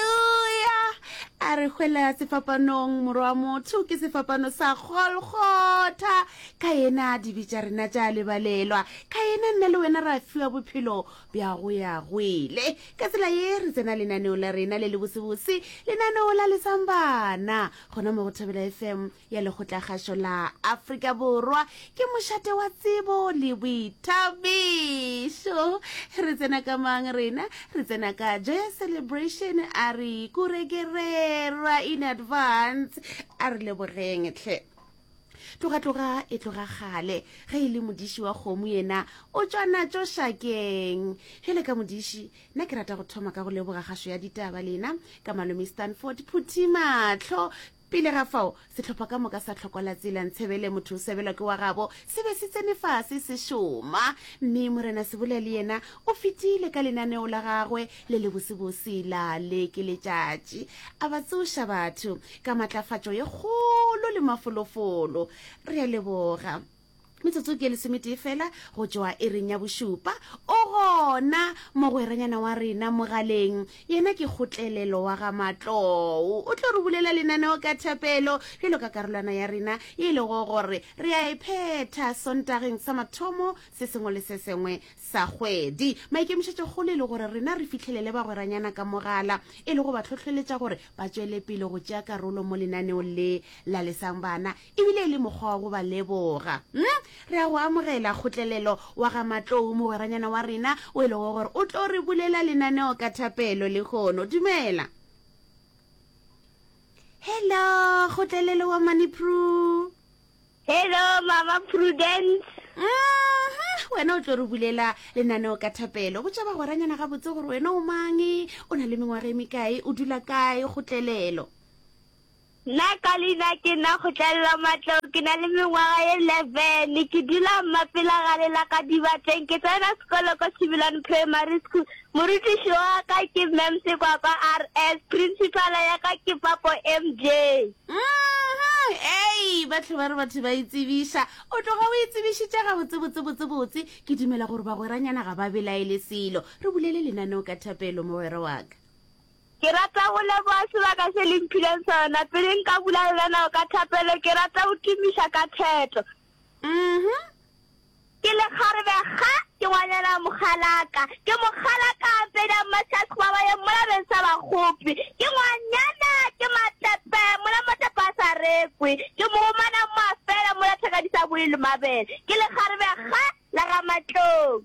Haleluya! A re hwela sefapanong, morwa motho ke sefapano sa Golgotha. Ka yena dibe tša rena tša lebalelwa. Ka yena nna le wena ra fiwa bophelo bja go ya gwele. Ka tsela ye re tsena lenaneo la rena le le bosebose, lenaneo la lesambana, gona mo go Thobela FM ya Lekgotlakgašo la Afrika Borwa ke mošate wa tsebo le boithabišo. Re tsena ka mang rena? Re tsena ka Joyous Celebration a re kurekerera in advance. A re lebogeng tlhe. Tloga-tloga e tloga kgale ge e le modiši wa kgomo yena o tšwa natšo šakeng. Bjale ka modiši, nna ke rata go thoma ka go leboga kgašo ya ditaba lena ka malome Stanford Phuthimatlho Pele ga fao, sehlopha ka moka sa tlhokola tsela ntshebele, motho o sebelwa ke wa gabo, se be se tsene fase se šoma. Mme Morena Sebola le yena o fetile ka lenaneo la gagwe le lebosebose la le ke letšatši, a ba tsoša batho ka matlafatšo ye kgolo le mafolofolo. Re a leboga. metsotso ke lesometee fela go tšwa e reng ya bošupa o gona mogweranyana wa rena mogaleng yena ke kgotlelelo wa ga matlou o tlo re bulela lenaneo ka thapelo bjalo ka karolwana ya rena e lego gore re a e phetha sontageng sa mathomo se sengwe le se sengwe sa kgwedi maikemišetšo kgolo e le gore rena re fitlhelele bagweranyana ka mogala e le go ba tlhotlheletša gore ba tšwele pele go tšea karolo mo lenaneong le lalesang bana E bile e le mokgwa wa go ba leboga. Hm, re a go amogela kgotlelelo wa ga Matlou, mogweranyana wa rena o e lego gore o tlo re bulela lenaneo ka thapelo lehono. Dumela. Hello, kgotlelelo wa Mani Pru. Hello, Mama Prudence. Aha, wena o tlo re bulela lenaneo ka thapelo. Botša bagweranyana gabotse gore wena o mang, o na le mengwaga e mekae, o dula kae, kgotlelelo. Na ka leina ke na Kgotlelelo Matlou, ke na le mengwaga ye 11, ke dula Mmapela gare la ka Dibatleng. Ke tsena sekolo ko Tshibilane Primary School. Morutiši wa ka ke Mme Msekwakwa RS, Principala ya ka ke Papo MJ. Mmhum, ei, ba tlhoba re batho ba itsebiša. O tloga o itsebišitše gabotsebotsebotsebotse. Ke dumela gore bagweranyana ga ba belaele selo. Re bulele lenaneo ka thapelo, mogwera wa ka. Ke rata go leboga sebaka se le mphileng sona. Pele nka bula le lena ka thapelo, ke rata go tumiša ka theto. Mm-hmm. Ke lekgarebe ga ke ngwanyana mogalaka. Ke mogalaka a mpeda mmatlhasi ba ba ye mola beng sa bagopi. Ke ngwanyana ke matepe mola matepe a sa rekwe. Ke mogomana mafela mola thakadisa boile mabele. Ke lekgarebe ga la ga matlong.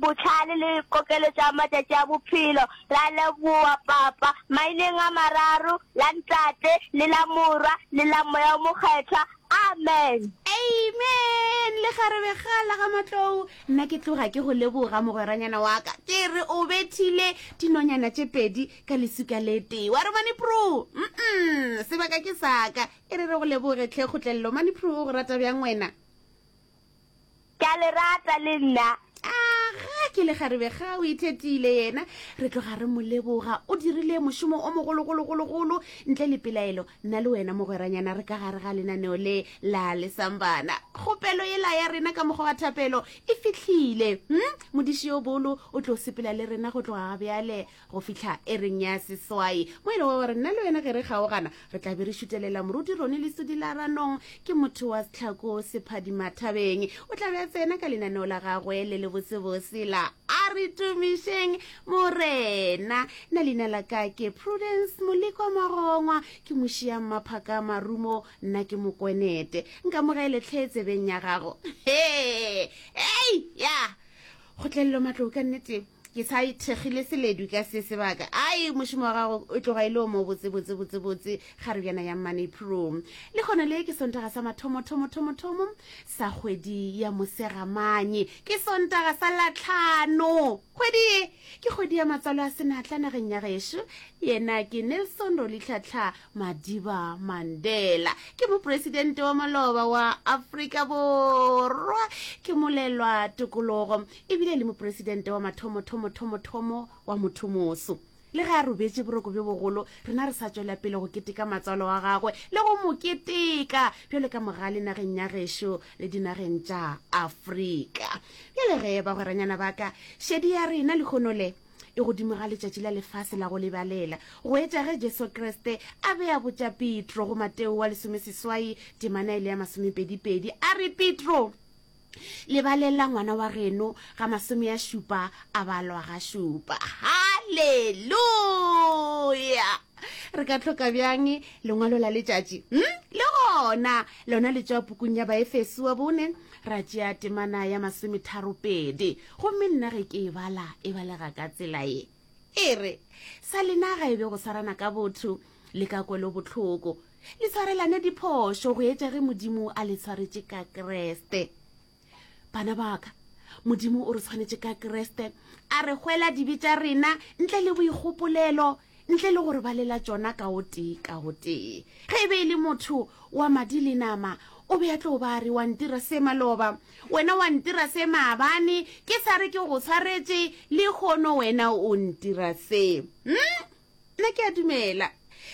Bohlale le kokelo tša matšatši a bophelo. Ra leboa Papa. Maineng a mararo, la Ntate, le la Morwa, le la Moya o Mokgethwa. Amen. Amen. Lekgarebe ga la ga Matlou, nna ke tloga ke go leboga mogweranyana wa ka. Ke re o bethile dinonyana tše pedi ka lesuka le tee. Wa re Mani Pru? Umm, sebaka ke sa ka. E re re go leboge tlhe kgotlelelo. Mani Pru o go rata bjang wena? Ke a le rata le nna. Aga ke lekgarebe ga o ithetile yena re tloga re mo leboga o dirile mošomo o mogologologologolo ntle le pelaelo nna le wena mogweranyana re ka gare ga lenaneo le la lesambana kgopelo e la ya rena ka mokgwa wa thapelo e fitlhile hm modiši yo bolo o tlo sepela le rena go tloga ga bjale go fihla ereng ya seswai mo e le gore nna le wena ge re kgaogana re tla be re šutelela moruti rone le sedilaranong ke motho wa setlhako sephadimathabeng o tla be a tsena ka lenaneo la gagwe le le bosebose la a re tumišeng morena nna leina la ka ke prudence molekwa magongwa ke mošiang maphaka marumo nna ke mokwenete nka mogeletlhe tsebeng ya gago he ei ya kgotlelelo matlo ka nneteng ke sa thekgile seledu ka se sebaka ai mošomo wa gago o tloga e le o mo botsebotsebotsebotse ga re bjana ya money pro le gona le ke sontaga sa mathomothomothomothomothomo sa kgwedi ya mosegamanye ke sontaga sa latlhano kgwedi ye ke kgwedi ya matswalo a senatla nageng ya gešo yena ke nelson rolitlhatlha madiba mandela ke moporesidente wa maloba wa afrika borwa ke molelwa tokologo e bile le moporesidente wa mathomothomothomothomothomo wa mothomoso le ge a robetše boroko bjo bogolo rena re sa tswela pele go keteka matswalo wa gagwe le go mo keteka bjale ka moga le nageng ya gešo le dinageng tša afrika bjale ge bagweranyana ba ka šedi ya rena lekgono le e godimo ga letšatši la lefase la go lebalela go etša ge jesu kriste a be a botša petro go mateo wa lesomeseswai temana e le ya masomepedipedi a re petro lebaleng la ngwana wa geno ga masome ya šupa a balwa ga šupa halleluya re ka tlhoka bjang lengwalo la letšatši hmm? le gona lona le tšwa pukung ya baefeso wa bone ra tšea temana ya masometharopedi gomme nna ge ke e bala e balega ka tsela ye e re sa lenaga e be go swarana ka botho le ka kwelo botlhoko Le tshwarelane diphošo go etša ge Modimo a le tshwaretše ka Kriste. Bana ba ka, Modimo o re tshwanetše ka Kriste, a re hwela dibe tša rena ntle le boikgopolelo, ntle le gore ba lela tšona ka o tee ka o tee. Ge e be e le motho wa madi le nama, o be a tlo ba re wa ntira se maloba, wena wa ntira se maabane, ke sa re ke go tshwaretše, le kgono wena o ntira se. Hmm? nna ke a dumela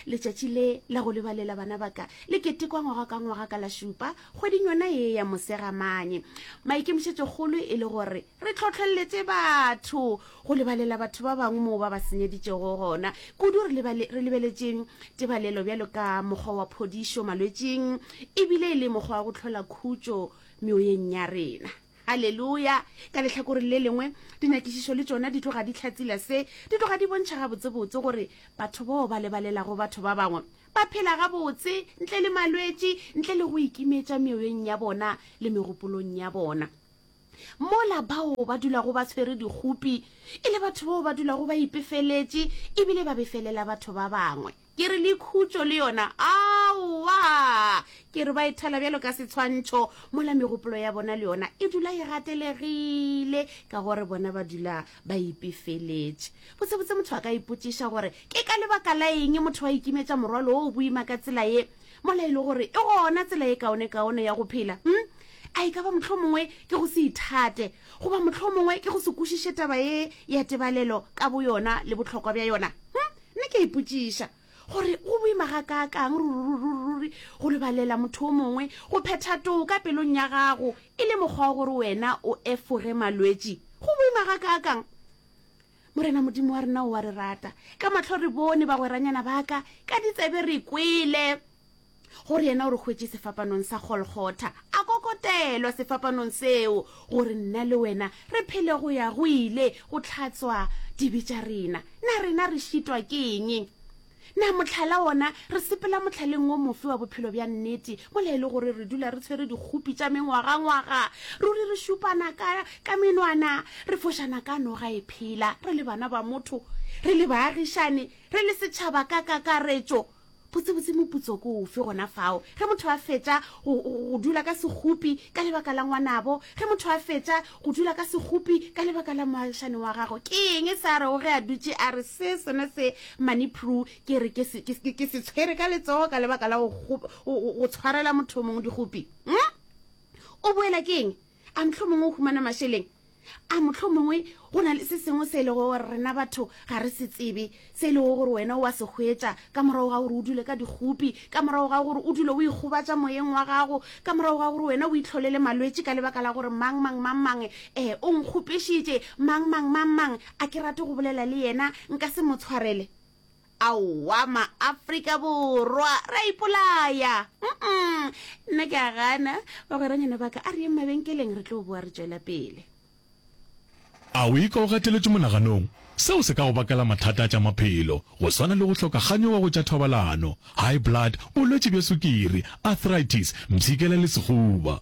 letšatši le la go lebalela bana baka le ketekwa ngwaga ka ngwaga ka la šupa kgweding yona ye ya mosegamanye maikemišetšokgolo e le gore re tlhotlheletse batho go lebalela batho ba bangwe moo ba ba senyeditšego gona kudu re lebeletšeng tebalelo bjalo ka mokgwa wa phodišo malwetšing ebile e le mokgwa wa go tlhola khutšo meoyeng ya rena Aleluya! Ka lehlakoreng le lengwe, dinyakišišo le tšona di tloga di hlatsila se. Di tloga di bontšha gabotsebotse gore batho bao ba lebalelago batho ba bangwe ba phela gabotse, ntle le malwetši, ntle le go ikimetša meoyeng ya bona le megopolong ya bona. Mola bao ba dulago ba tshwere dikgopi e le batho bao ba dulago ba ipefeletše e bile ba befelela batho ba bangwe. Ke re le khutšo le yona? Aowa! Ke re ba e thela bjalo ka setshwantšho, mola megopolo ya bona le yona e dula e gatelegile ka gore bona ba dula ba ipefeletše. Botsebotse motho a ka ipotšiša gore ke ka lebaka la eng motho a ikimetša morwalo wo o boima ka tsela ye, mola e le gore e gona tsela e kaonekaone ya go phela. Hm, a e ka ba mohlomongwe ke go se ithate, goba mohlomongwe ke go se kwešiše taba ye ya tebalelo ka boyona le bohlokwa bja yona? Hm, Nna ke a ipotšiša gore go boima ga ka kang rururururi go lebalela motho o mongwe go phetha too ka pelong ya gago e le mokgwa wa gore wena o efoge malwetši. Go boima ga ka kang! Morena Modimo wa rena o a re rata. Ka mahlo re bone bagweranyana ba ka, ka ditsebe re kwele gore yena o re hwetše sefapanong sa golgotha a kokotelwa sefapanong seo gore nna le wena re phele go ya go ile go tlhatswa dibe tša rena na rena re šitwa ke eng na motlhala wona re sepela motlhaleng o mofe wa bophelo bja nnete mola e le gore re dula re tshwere dikgopi tša mengwagangwaga ruri re šupana ka ka menwana re fošana ka noga e phela re le bana ba motho re le baagišane re le setšhaba ka kakaretšo Botsebotse moputso ko ofe gona fao ge motho a fetša go dula ka segopi ka lebaka la ngwanabo, ge motho a fetša go dula ka segopi ka lebaka la moagišane wa gago? Ke eng e sa rego ge a dutše a re se sone se Mani Pru ke re ke se tshwere ka letsogo ka lebaka la go tshwarela motho o mongwe digopi? Hm? O boela ke eng? A mohlomongwe o humana mašeleng? A mohlomongwe go na le se sengwe se e lego gore rena batho ga re se tsebe, se e lego gore wena o wa se hwetša ka morago ga gore o dule ka dikgopi, ka morago ga gore o dule o ikgobatša moyeng wa gago, ka morago ga gore wena o itlholele malwetši ka lebaka la gore mang mang mang mang e o nkgopešitše, mang mang mang mang a ke rate go bolela le yena, nka se mo tshwarele. Aowa maAfrika Borwa re a ipolaya. Mm-mm. Nna ke a gana. Bagweranyana ba ka a re yeng mabenkeleng re tlo boa re tšwela pele. A o ikwa o gateletšwe monaganong? Seo se ka go bakela mathata a tša maphelo, go swana le go hloka kganyo wa go tša thobalano, high blood, bolwetši bja sukiri, arthritis, mpshikela le sehuba.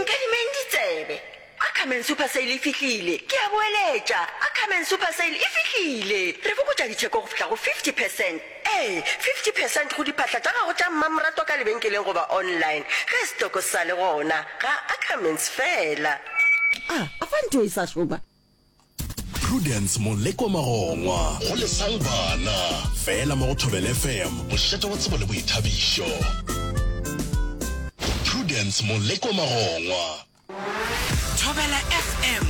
Nkadimeng ditsebe. Ackerman Super Sale e fihlile! Ke a boeletša, Ackerman Super Sale e fihlile! Re fokotša ditheko go fihla go 50 percent. Ee, 50 percent go diphahla tša gago tša mmamoratwa ka lebenkeleng goba online, ge setoko se sa le gona. Ga Ackermans feela. A, a fa ntho e sa šoma? Prudence Moleko Magongwa go lesang bana fela mo go Thobela FM, mošate wa tsebo le boithabišo. Prudence Moleko Magongwa. Thobela FM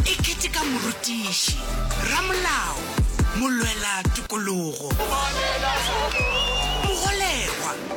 e keteka morutiši, ramolao, molwela tokologo, mogolegwa.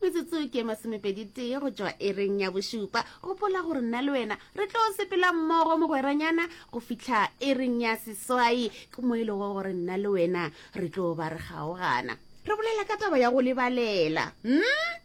metsotso ke masomepeditee go tšwa ereng ya bošupa gopola gore nna le wena re tlo sepela mmogo mogweranyana go fitlha ereng ya seswai ke mo e lego gore nna le wena re tlo ba re kgaogana re bolela ka taba ya go lebalela hmm?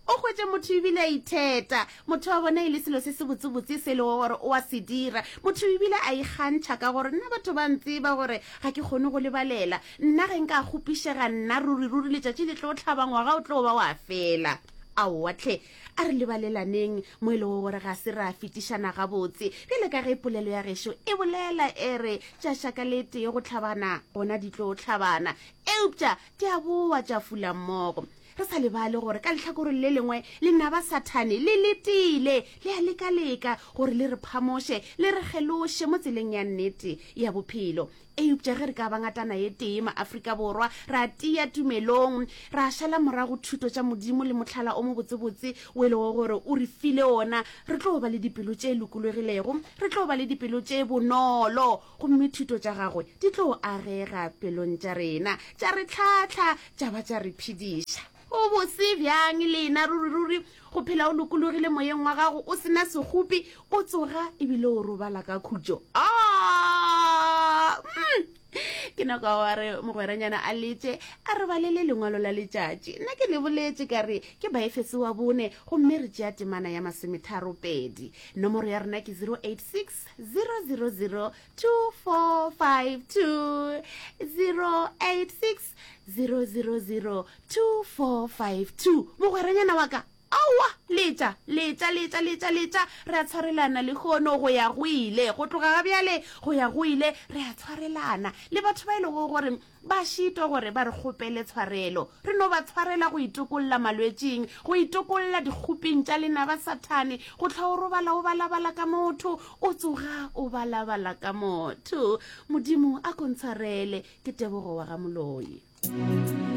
o kgwetse motho ebile a itheta motho wa bona e le selo se se botsebotse se e lego gore o a se dira motho ebile a ikgantšha ka gore nna batho ba ntseba gore ga ke kgone go lebalela Nna ge nka kgopišega, nna, ruriruri letšatši le tlo hlaba, ngwaga o tlo ba wa fela. Aowa hle, a re lebalelaneng, mo e lego gore ga se ra fetišana gabotse, bjale ka ge polelo ya gešo e bolela, e re, Tša šaka le tee go hlabana, gona di tlo hlabana. Eupša di a boa tša fula mmogo. Re sa lebale gore ka lehlakoreng le lengwe lenaba Sathane le letile, le a leka-leka gore le re phamoše, le re geloše mo tseleng ya nnete ya bophelo. eupša ge re ka ba ngatana ye tee maaforika borwa ra tia tumelong ra šala morago thuto tša modimo le motlhala o mobotsebotse o e lego gore o re file ona re tlo ba le dipelo tše lokologilego re tlo ba le dipelo tše bonolo gomme thuto tša gagwe di tlo agega pelong tša rena tša re tlhatlha tša ba tša re phediša O bose bjang lena, ruriruri, go phela o lokologile moyeng wa gago, o sena segopi, o tsoga ebile o robala ka khutšo. Aa! Mm. Ke na kwa wa re mogweranyana a letše a re balele lengwalo la letšatši. Nna ke le boletše ka re ke Baefese wa bone, gomme re tšea temana ya masometharo pedi. Nomoro ya rena ke 086 000 2452 086 0002452 mogweranyana wa ka aowa letša letša letša letša letša re a tshwarelana le kgono go ya go ile go tloga ga bjale go ya go ile re a tshwarelana le batho ba e lego gore ba šitwa gore ba re kgopele tshwarelo re no ba tshwarela go itokolola malwetšing go itokolola dikgoping tša lenaba sathane go tlha o robala o balabala ka motho o tsoga o balabala ka motho modimo a kontshwarele ke tebogo wa ga moloi